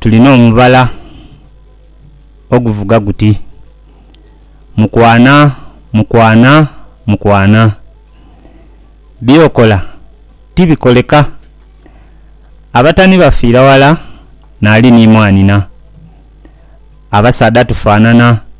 Tulina omubala oguvuga guti, Mukwana, mukwana, mukwana. By'okola tibikoleka. Abatani bafiira wala naali ni mwanina. Abasaadha tufaanana.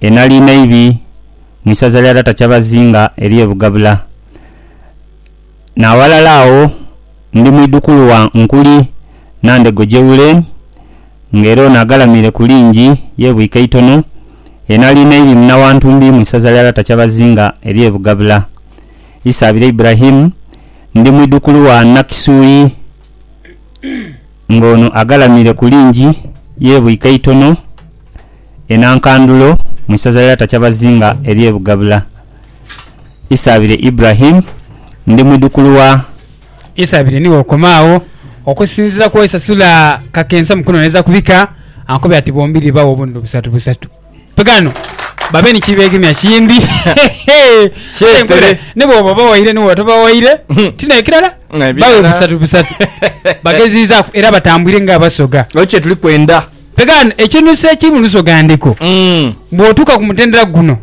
E Nalinaibi mu isaza lya Data Kyabazinga ery'e Bugabula. N'aghalala agho ndi mwidhukulu wa Nkuli Nandego Jewulen ng'era ono agalamire ku lingi ye Bwikaitono e Nalinaibi muna wa Ntumbi mu isaza lya Data Kyabazinga ery'e Bugabula. Isaabire Ibrahim ndi mwidhukulu wa Nakisuyi. Ng'ono agalamire ku lingi yeebwika eitono e Nankandulo mu isaza lya Takyabazinga ery'e Bugabula. Isaabire Ibrahim, ndi mwidhukulu wa. Isaabire ni w'okoma agho. Okusinziira ku Isasula Kakensa mu kunoonyereza ku bika, ankobera nti bombiriri baagho obunene busatu busatu. Ghano babe ni kibeegemya kimbi. Kale nkole, ni bw'oba obawaire ni bw'oba tobawaire, ti n'ekirala, bawe busatu busatu. Bageziizaaku era batambwire ng'Abasoga. Ekyo kye tuli kwenda. Ghano ekinuuso ekiri mu Lusoga Ndiko, bw'otuuka ku mutendera guno,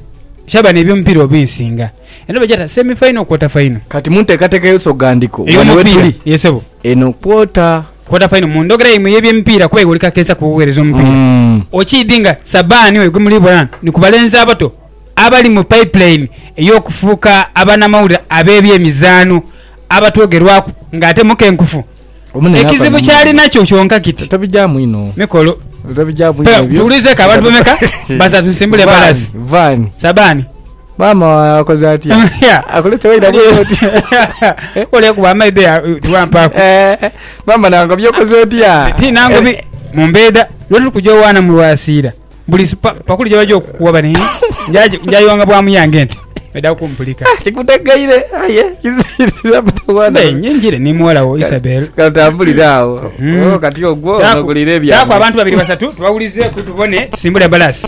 kyaba n'eby'omupiira obinsinga. Eno bagyeta semi faino, kwota faino. Kati mu nteekateeka y'Olusoga Ndiko, ghano we tuli. Ey'omupiira. Yee, ssebo. Eno kwota. Quarter final mu ndhogera yaimwe ey'ebyemipiira kuba iwe oli kakeesa ku buweereza omupiira. Okiidhi nga Sabaani oyo gwe muli bona ni ku balenzi abato abali mu pipeline ey'okufuuka abanamawulire ab'ebyemizaano abatwogerwaku ng'ate mukenkufu. Ekizibu ky'ali nakyo kyonka kiti mikolo. Tuwulizeeko abantu bameka? Basatu. Nsimbule embalaasi. Sabaani. Maama wawe akoze atya? Akulete waidha bwire oti? Oli ekuba amaidho ya tiwampaaku. Eh, eh, maama nangobya okoze otya? Ti nangobi Eh, mu mbeeda lwe tuli kuja owaana mu lwasiira buli si- pa- pakuli gye baja okukuwa bani njaji- njayiwanga bwa muyange nti baidha kumpulika. kikutegeire aye kisirisiza mutawana Mbe nyingire ni muwala wo Isabel. katambulire awo Mm. Oh, kati ogwo Taaku- nogulira ebya taaku abantu babiri basatu tubawulizeeku tubone tusimbule balasi